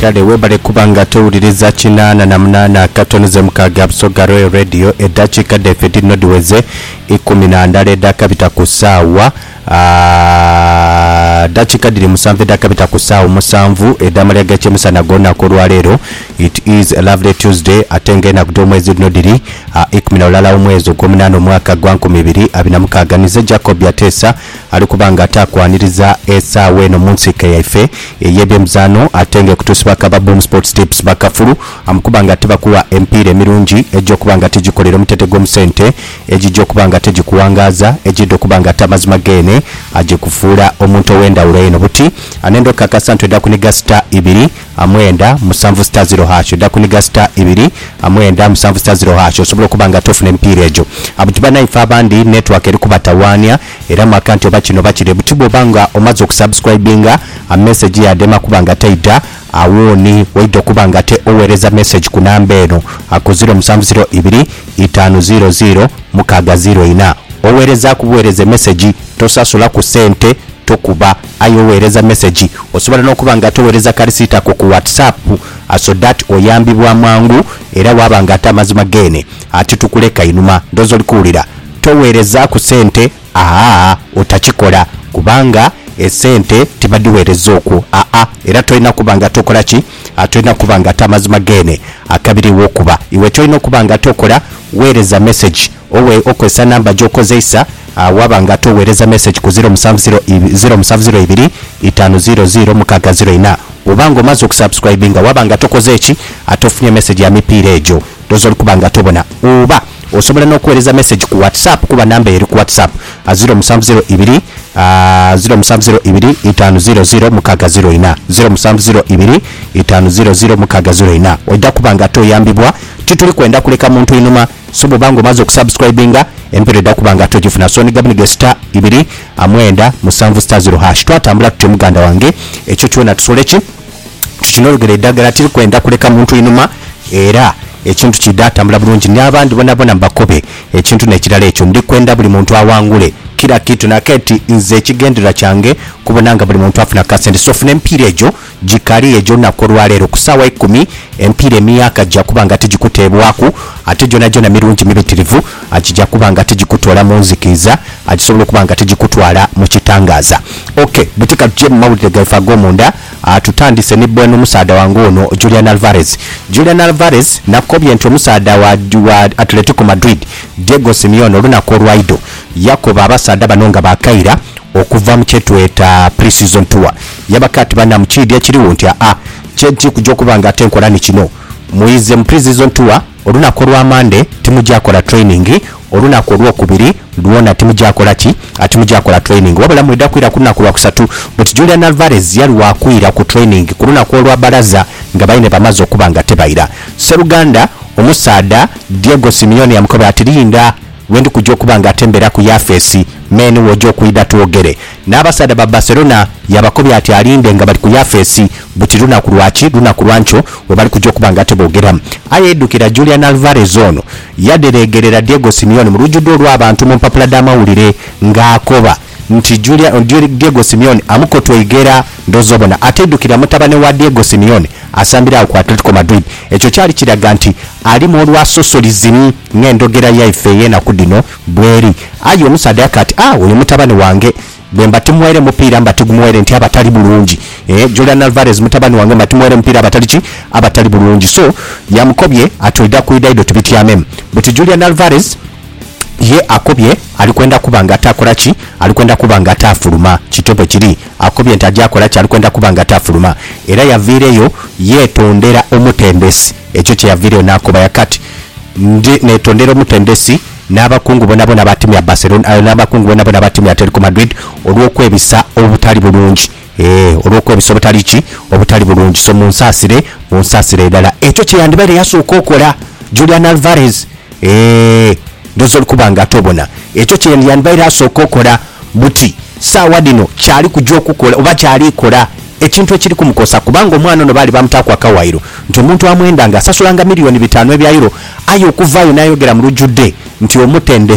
Kale webale kuba nga towuliriza kinaana na munaana akatono ze mukaaga Busoga Royal Radio. Eddakiika dhaife dhirino dhiweze ikumi na ndala edhakabita ku saawa aa ddakiika dhiri musanvu edhakabita ku saawa omusanvu edh'amalya g'ekyemisana ag'olunaku olwaleero. It is a lovely Tuesday ate nga enaku dh'omwezi dhino dhiri aa ikumi na lulala w'omwezi ogw'omunaana omwaka gwa nkumi ibiri abiri na mukaaga. Nize Jacob Ateesa. Ali kuba nga ataakwaniriza esaagho eno mu nsiike yaife ey'ebyemizaano ate ng'ekutuusibwaku aba Boom Sports Tips bakafulu amukuba nga tibakugha emipiira emirungi egya okuba nga tigikolera omutete gwo mu sente, egigya okuba nga tegikuwangaaza, egyidha okuba nga ate amazima geene agikufuula omuntu ow'endhawulo eno. Buti anenda okukakasa nti oidha kuniga sita ibiri amwenda musanvu sita ziro hash oidha kuniga sita ibiri amwenda musanvu sita ziro hash osobole okuba nga ate ofuna emipiira egyo. Abuti banaaife abandi network eri kubatawaania Era mwaka nti oba kino oba kile buti bwoba nga omaze oku subscribinga a message yade ema kuba nga teidha awooni waidha okuba nga ate owereza message ku namba eno aku ziro musanvu ziro ibiri itaanu ziro ziro mukaaga ziro ina owerezaku buwereza emessage tosasula ku sente tokuba aye owereza message osobola nokuba nga ate owereza ka receipt ako ku WhatsApp so dat oyambibwa mangu era waba nga ate amazima gene ati tukuleka inhuma ndhoozi oli kuwulira togheerezaaku sente aa otakikola kubanga esente tibadhiweereza okwo aa era tolina kuba nga tokola ki tolina kuba nga ate amazima geene akabiriwo kuba iwe kyolina okuba nga ate okola weereza message owe okozesa number gyokozeisa aa waba nga ate oweereza message ku ziro musanvu ziro ibi ziro musanvu ziro ibiri itaanu ziro ziro mukaaga ziro ina oba nga omaze okusubscribinga waba nga tokoze ki ate ofunye message ya mipiira egyo Those oli kuba nga tobona oba osobola n'okuweereza message ku WhatsApp kuba number eri ku WhatsApp a ziro musanvu ziro ibiri a ziro musanvu ziro ibiri itaanu ziro ziro mukaaga ziro ina, ziro musanvu ziro ibiri itaanu ziro ziro mukaaga ziro ina. Oidha kuba nga toyambibwa, tituli kwenda kuleka muntu inhuma so bw'oba nga omaze okusubscribinga, empeera oidha kuba nga togifuna so ni gabunige star ibiri a mwenda musanvu star ziro hash. Twatambula tutyo muganda wange ekyo kyona tusole ki? Tukinhorogera eidagala tiri kwenda kuleka muntu inhuma era ekintu kiidha tambula bulungi ni abandi bonabona mbakobe ekintu nekirala ekyo ndi kwenda buli muntu awangule kira kitu naketi nze ekigendererwa kyange kubona nga buli muntu afuna kasente so funa emipiira egyo gikali egyo lunaku olwaleero ku saawa ikumi emipiira emiaka gyakuba nga tigikuteebwaku ate gyonagyona mirungi mibitirivu gija kuba nga tigikutoola mu nzikiiza gisobola okuba nga tigikutwala mu kitangaaza ok bweteka tugye mu mawulire gaife agomunda. Tutandise ni bweno omusaadha wange ono Julian Alvarez. Julian Alvarez nakobye nti omusaadha wa wa Atletico Madrid Diego Simeone olunaku olwaidho yakoba abasaadha bano nga bakaira okuva mu kyetweta pre-season tour. Yabakoba ati banamu kiidhi ekirigho nti aa kye nti kuja okuba nga ate nkola ni kino muize mu pre-season tour. Olunaku olwa Monday timuja kola training, olunaku olwokubiri lwona timuja kola ki? timuja kola training wabula mwidha kwira ku lunaku lwakusatu but Julian Alvarez yali wakwira ku training ku lunaku olwa baraza nga baine bamaze okuba nga tebaira. Sseruganda omusaadha Diego Simeone yamukoba ati, Linda lwendi kuja okuba nga atembeera ku yafeesi, men woja okwidha twogere. N'abasaadha ba Barcelona yaabakobya ati alinde nga bali ku yafeesi buti lunaku lwa ki lunaku lwa nkyo we bali kuja okuba nga teboogera. Aye yaidhukira Julian Alvarez ono yadhereegerera Diego Simeone mu lujudho olw'abantu mu mpapula dh'amawulire ng'akoba nti Julia, Diego Simeone amukotweighe era ndhooza obona ataidhukira mutabane wa Diego Simeone asambira agho ku Atletico Madrid. Ekyo kyali kiraga nti alimu olwasosolizi ng'endhogera yaife ey'enaku dhino Bw'eri. Aye omusaadha yaka ati, A, oyo mutabani wange. Bwe mba timughaire mupiira, mba tigumughaire nti abatali bulungi. Eeh, Julian Alvarez mutabani wange, mba timughaire mupiira abatali ki? Abatali bulungi. So, yamukobye ati, Oidha kwidha idho tubityamemu. Buti Julian Alvarez ye akobye ali kwenda kuba nga atakola ki? Ali kwenda kuba nga ataafuluma. Kityo bwe kiri. Akobye nti aja kola ki? Ali kwenda kuba nga ataafuluma. Era yaviireyo yeetondera omutendesi. Ekyo kye yaviireyo n'akoba. Yaka ati, Ndhi neetondera omutendesi n'abakungu boonaboona aba tiimu ya Barcelona aye n'abakungu boonaboona aba tiimu ya Atletico Madrid olw'okwebisa obutali bulungi, ee, olw'okwebisa obutali ki? Obutali bulungi. So munsaasire, munsaasire irala. Ekyo kye yandibaire yasooka okola Julian Alvarez. Ee, ndhooza oli kuba nga ate obona. Ekyo kye yandibaire asooka okola buti. Saagha dhino kyali kuja okukola oba kyali kola ekintu ekiri kumukosa kubanga omwana ono baali baamutaaku akawaayiro nti omuntu amwendanga asasulanga miliyooni bitaanu ebya Euro aye okuvaayo n'ayogera mu lujudhe nti omutendhe